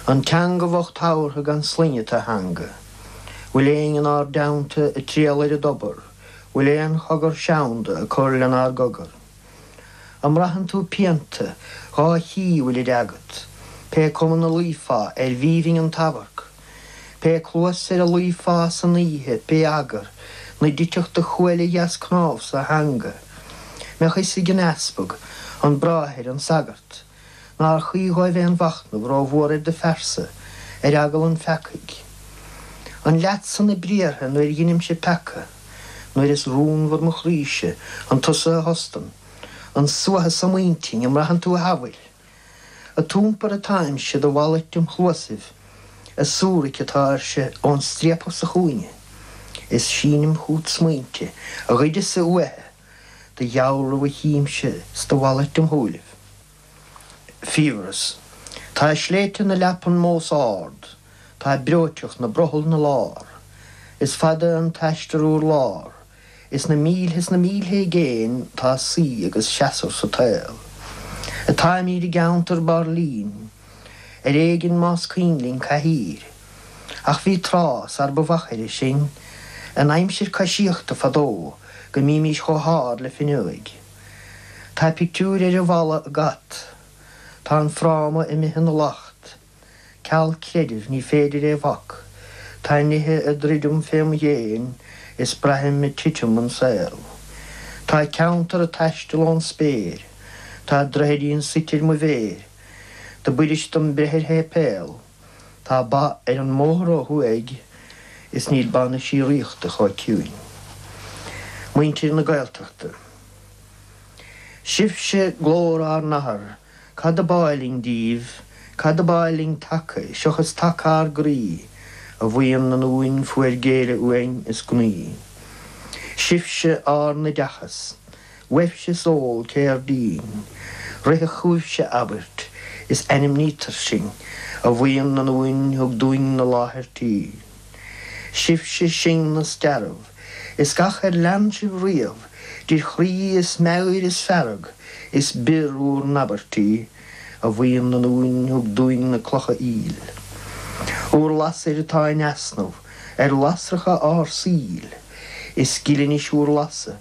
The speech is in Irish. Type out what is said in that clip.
An teanga bhocht tabhartha gan sloinne tú a theanga bhfuil éinn in ár dteannta ag triall ar an dtobar bhfuil aon chogar seanda ag cur lenár gcogar. An mbraitheann tú pianta dhá chíoch bhfuilid agat pé cuma ina luífeá arbh aoibhinn an t-amharc pé cluas ar a luífeá san oíche pé eagar ina dtitfeadh do chuail dheas cnámhsa a theanga mbeadh 'fhios ag an easpag, an bráthair, an sagart. Nár chuí dhóibh aon mhachnamh rómhór ar do phearsa, ar eagal an pheacaigh? An leatsa na briathra nuair dheinimse peaca, nuair is rúnmhar mo chroíse? An tusa a thostann an suathadh so im intinn, an mbraitheann tú a shamhail? Ad iompar atáimse do mhalairt im chluasaibh, ag súrac atáirse ón striapach sa chúinne, is sínim chút smaointe a ghoideas-sa uaithe. Do dhealramh a chímse 's do mhalairt im shúilibh. Fiabhras. Tá sléibhte na leapan mós ard, tá breoiteacht 'na brothall 'na lár, Is fada an t-aistear urlár, is na mílthe 's na mílthe i gcéin tá suí agus seasamh sa tsaol. Atáimíd i gceantar bairlín, ar éigin más cuimhin linn cathaoir, Ach bhí tráth sar ba mhachaire sinn, in aimsir coisíochta fadó, go mbímís chomh hard le fuinneoig. Tá pictiúir ar an bhfalla ag at. Tá an fráma imithe ina lacht. Ceal creidimh ní féidir é bhac. Tá nithe ag druidim fém dhéin is braithim ag titim an saol. Tá ceantar ag taisteal ón spéir. Tá droichidín suite ar mo mhéir. Dob fhuirist dom breith ar shéipéal. Tá ba ar an mbóthar ó thuaidh is níl ba na síoraíochta chomh ciúin. Muintir na Gaeltachta. Sibhse glór ár n-athar, cad ab áil linn díbh, cad ab áil linn taca, seochas taca ár gcroí, a bhuíon na nduan fuair géire uainn is gnaoi. Sibhse ár n-oideachas. Sibhse ceol cairdín, ritheann chúibhse abairt is ainmnítear sinn, a bhuíon na nduan thug dúinn na láthair tí. Sibhse sinne 's dearbh is gach ar lean sibh riamh de chroí is meabhair is fearg is bior bhur n-abairtí, a bhuíon na nduan thug dúinn na clocha aoil. Bhur lasair atá in easnamh ar lasracha ár saoil, is gile anois bhur lasadh